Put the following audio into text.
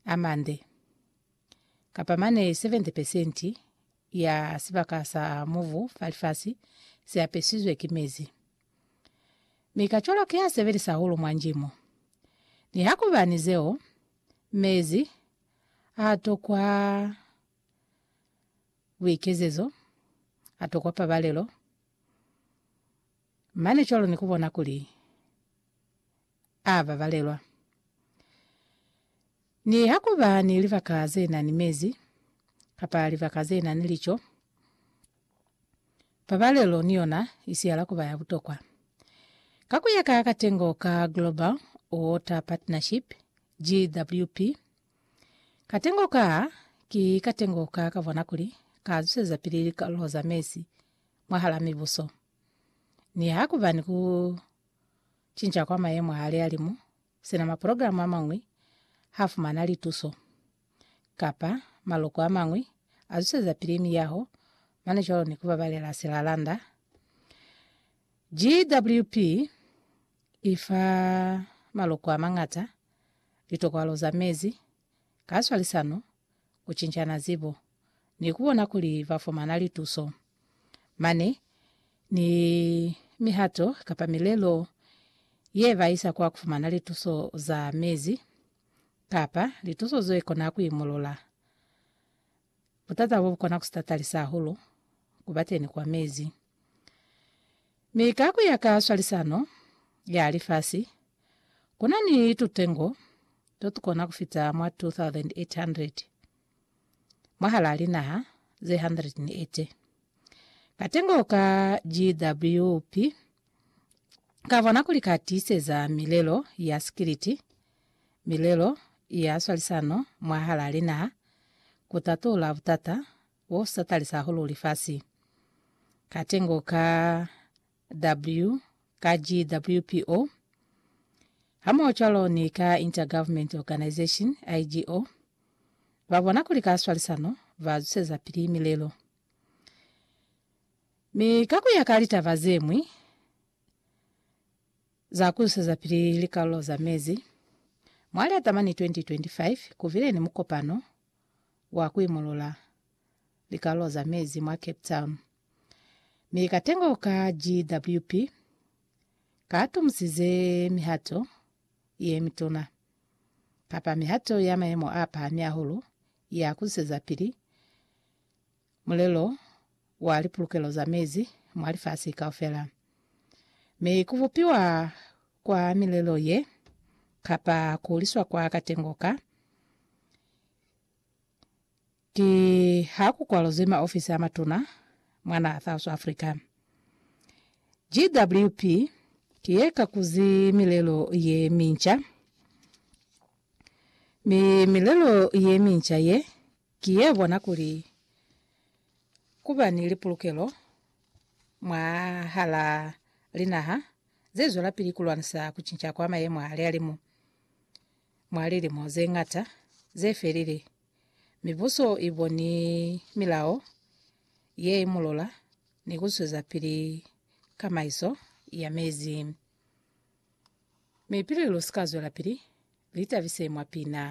a mande, kapa mane 70 pesenti ya sibaka sa mubu fa lifasi si apesizwe ki mezi. Mi kacwalo ki a sebelisa hahulu mwa njimo. Nihakuba ni zeo, mezi a tokwa buikezezo, a tokwa pabalelo, mane cwalo ni ku bona kuli a babalelwa. Niha ku ba ni libaka ze na ni mezi kapa libaka ze na ni lico, pabalelo ni yona i siyala ku ba ya butokwa. Ka ku ya ka katengo ka Global Water Partnership, GWP, katengo ka ki katengo ka ka bona kuli ka zusezapili likalulo za mezi mwahal'a mibuso, niha ku ba ni ku Cinca kwa mayemo a lihalimu, sina maprogramu a mañwi ha fumana lituso, kapa maloko a mañwi a zwisezapili miyaho, mane cwalo ni ku babalela silalanda. GWP i fa maloko a mañata litokwalo za mezi, ka swalisano ku cincana zibo, ni ku bona kuli ba fumana lituso. Mane ni mihato kapa milelo ye ba isa kwa ku fumana lituso za mezi kapa lituso ze kona ku imolola butata bo bu kona ku sitatalisa hahulu ku ba teni kwa mezi. Mi ka ku ya ka swalisano ya lifasi, ku na ni tutengo to tukona ku fita mwa 2,800 mwahalaa linaha ze 180. Katengo ka GWP ka bona kuli ka tiiseza milelo ya sikiliti, milelo ya swalisano mwahalaa linaha, ku tatula butata bo sa talisa hahulu lifasi. Katengo ka W ka GWPO hamohocwalo ni ka Intergovernment Organisation, IGO, ba bona kuli ka swalisano ba zusezapili milelo. Mi ka kuya ka litaba zeñwi za kuzusezapili likalulo za mezi, mwa Liatamani 2025 kubile ni mukopano wa kuimulula likalulo za mezi mwa Cape Town. Mi katengo ka GWP katumusize mihato yemituna, kapa mihato ya mayemo a pahami ahulu ya kuzwisezapili mulelo wa lipulukelo za mezi mwa lifasi kaufela. Mi kubupiwa kwa milelo ye, kapa kuhuliswa kwa katengo ka, Ki ha ku kwalozwi maofisi a matuna mwa naha South Africa. GWP ki ye kakuzi milelo ye minca, mi milelo ye minca ye ki ye bona kuli ku ba ni lipulukelo mwahala linaha ze zwelapili ku lwanisa ku cinca kwa mayemo a lihalimu. Mwa lilimo ze ñata ze felile, mibuso i boni milao ye imulola ni ku zwezapili kamaiso ya mezi. Mi pili lu si ka zwelapili, li tabise mwa pina.